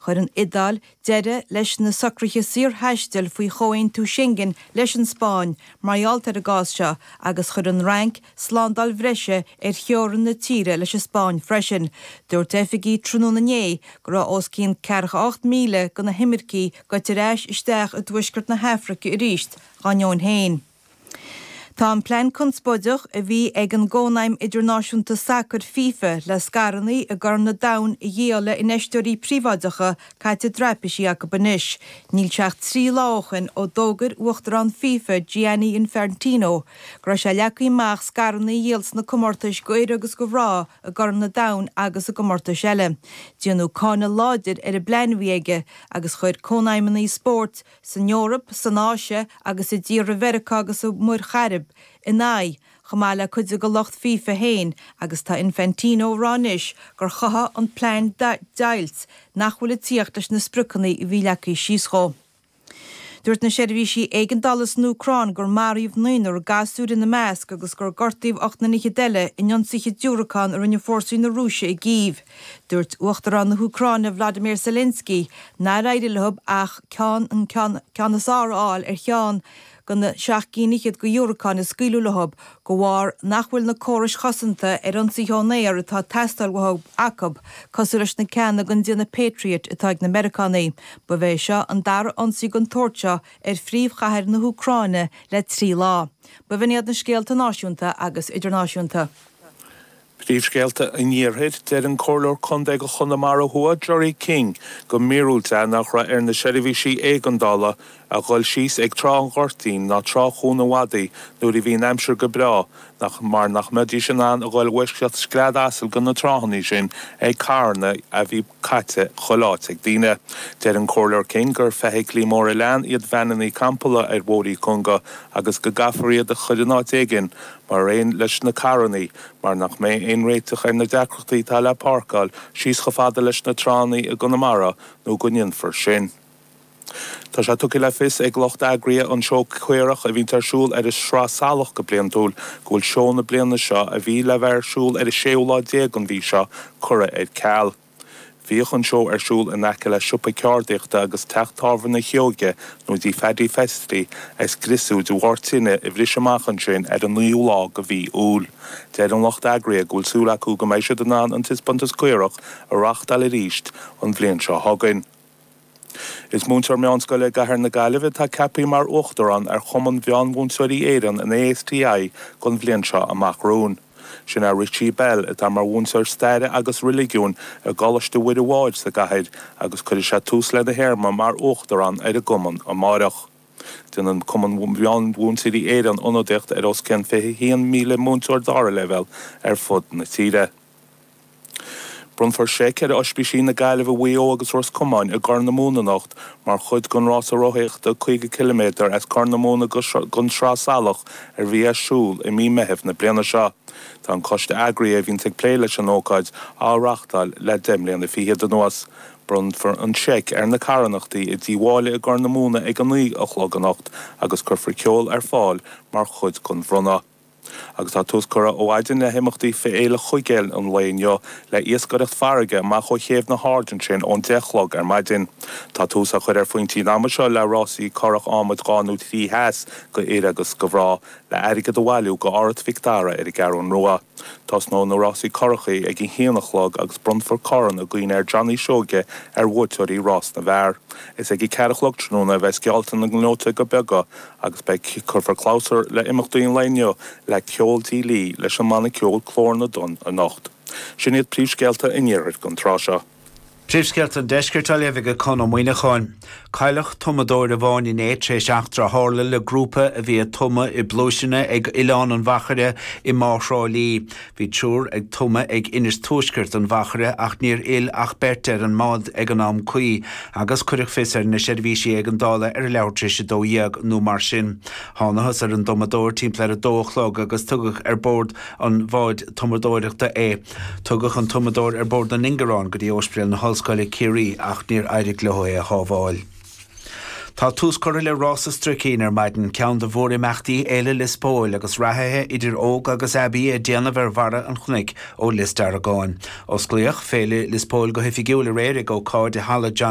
Chuir an Iodáil deireadh leis na socruithe saorthaistil faoi chomhaontú Schengen leis an Spáinn mar gheall ar an gcás seo agus chuir an Fhrainc slándáil bhreise ar theorainn na tíre leis an Spáinn freisin. Dúirt oifigigh tráthnóna inné go raibh os cionn 48,000 de na himircigh gaibhte ar ais isteach i dtuaisceart na hAfraice arís dá ndeoin féin. Tá an plean conspóideach a bhí ag an gCónaidhm Idirnáisiúnta Sacair, fifa, le scaireanna i gCorn na Domhain a dhíol le infheisteoirí príobháideacha caite i dtraipisí acu anois. Níl sé ach trí lá ó shin ó d'fhógair Uachtarán fifa, Gianni Infantino, go raibh sé leagtha amach scaireanna a dhíol sna comórtais go fhir agus go mhná i gCorn na Domhain agus i gcomórtais eile. Déanadh cáineadh láidir ar an bplean a bhí aige agus chuir cónaidhmeanna spóirt, san Eoraip, san Áise agus i dtíortha Mheiriceá agus an Mhuir Chairib ina aghaidh, chomh maith le cuid de go lucht fifa féin agus tá Infantino ag rá anois gur chothaigh an plean deighilt nach bhfuil ag tíocht leis na spriocanna a bhí leagtha síos dhó. Dúirt na seirbhísí éigeandála san Úcráin gur maraíodh naonúr, gasúir ina measc, agus gur gortaíodh ocht nduine eile in ionsaithe diúracán a rinne fórsaí na Rúise i gCív. Dúirt Uachtarán na hÚcráine Vladimir Zelensky nár éirigh leo ach an ceann is fearr a fháil ar cheann de na seacht gcinn fhichead go dhiúracáin a scaoileadh leo de bharr nach bhfuil na córais chosanta ar ionsaithe ón aer atá teastáil uathu acu cosúil leis na ceanna gon déanamh Patriot atá ag na Meiriceánaigh. Ba é seo an dara ionsaí den tsórt seo ar phríomhchathair na hÚcráine le trí lá. Ba shin iad na scéalta náisiúnta agus idirnáisiúnta. Príomhscéalta an Iarthair, Deir an Comhairleoir Contae go Chonamara Thuaidh Gerry King gur míorúilt é nach raibh ar na seirbhísí éigeandála a dhul síos ag Trá an Ghoirtín ná Trá Chuan an Mhadaidh nuair a bhí an aimsir go breá nach mar nach mbeidís in ann a dhul i bhfoisceacht scread asail go na tránna sin ag carranna a bhí caite chuile áit ag daoine. Deir an Comhairleoir King gur feithiclí móra leathan iad veaineanna campála ar bhóithre cúnga agus go gcaithfear iad a chur in áit éigin mar aon leis na carranna mar nach mbeidh aon réiteach ar na deacrachtaí atá le páirceáil síos chomh fada leis na tránna i gConamara nó go ndéanfar sin. Tá sé tugtha le fios ag lucht eagraithe an seó caorach a bhíonn ar siúl ar an Sraith Salach go bliantúil go bhfuil seó na bliana seo, a bhí le bheith ar siúl ar an séú lá déag an mhí seo, curtha ar ceal. Bhíodh an seó ar siúl in aice le siopa ceardaíochta agus teach tábhairne Sheoige nó tigh Phaddy Festy a scriosadh de bharr tine a bhris amach ansin ar an naoú lá go mhí Iúil. Deir an lucht eagraithe go bhfuil súil acu go mbeidh siad in ann an Taispeántas Caorach a reáchtáil arís an bhliain seo chugainn. Is múinteoir meánscoile i gcathair na Gaillimhe atá ceaptha mar Uachtarán ar Chumann Mheánmhúinteoirí Éireann, an ASTI, don bhliain seo amach romhainn. Sin é Richie Bell, atá mar mhúinteoir Staire agus Reiligiúin i gColáiste Mhuire Mháthair sa gcathair agus cuirfidh sé tús lena théarma mar Uachtarán ar an gCumann amárach. Déanann Cumann Mheánmhúinteoirí Éireann ionadaíocht ar os cionn 21,000 múinteoir dara leibhéal ar fud na tíre. Bronnfar seic ar Oispísí na Gaillimhe, Mhaigh Eo agus Ros Comáin i gCorr na Móna anocht mar chuid den rása rothaíochta 50 ciliméadar as Corr na Móna go An Sraith Salach a bhí ar siúl i mí Meithimh na bliana seo. Tá an coiste eagraithe a bhíonn ag plé leis an ócáid á reáchtáil le deich mbliana fichead anuas. Bronnfar an seic ar na carthanachtaí i dTí Mháille i gCorr na Móna ag a naoi a chlog anocht agus cuirfear ceol ar fáil mar chuid den bhronnadh. agus tá tús curtha ó mhaidin le himeachtaí Féile Chuigéil an lae inniu le iascaireacht farraige amach ó Chéibh na hAirde ansin ón deich chlog ar maidin. Tá tús á chur ar phointí an ama seo le rásaí curach adhmaid dhá nó trí sheas do fhir agus do mhná le airgead a bhailiú do Áras Mhic Dara ar an gCeathrú Rua. Tosnóidh na rásaí curachaí ag a haon a chlog agus bronnfar corn i gcuimhne ar Johnny Seoige ar bhuaiteoirí rás na bhfear. Is ag a ceathair a chlog tráthnóna a bheas geallta na ngleoiteoga beaga agus beidh cuirfear clabhsúr le imeachtaí an lae inniu le ceol Tigh Lee leis an mbanna ceoil Glór na dTonn anocht. Sin iad príomhscéalta an iarthair don tráth seo. Príomhscéalta an deiscirt á léamh ag Conn Ó Muíneacháin. Cailleadh tumadóir amháin inné tar éis eachtra a tharla le grúpa a bhí ag tumadh i bpluaiseanna ag Oileán an Mhachaire i mBá Thrá Lí. Bhí triúr ag tumadh ag Inis Tuaisceart an Mhachaire ach níor fhill ach beirt ar an mbád ag an am cuí agus cuireadh fios ar na seirbhísí éigeandála ar a leathuair tar éis 12:00 nó mar sin. Thánathas ar an dtumadóir timpeall ar a dó a chlog agus tugadh ar bord an bháid tumadóireachta é. Tugadh an tumadóir ar bord an ingearáin go dtí Ospidéal na hOllscoile, Ciarraí ach níor éirigh leo é a shábháil. Tá tús curtha le Rás an Stricín ar maidin, ceann de mhórimeachtaí Fhéile Lios Póil agus reathaithe idir óg agus aibí ag déanamh ar bharra an chnoic ó Lios Deargáin. Osclaíodh Féile Lios Póil go hoifigiúil aréir ag ócáid i Halla John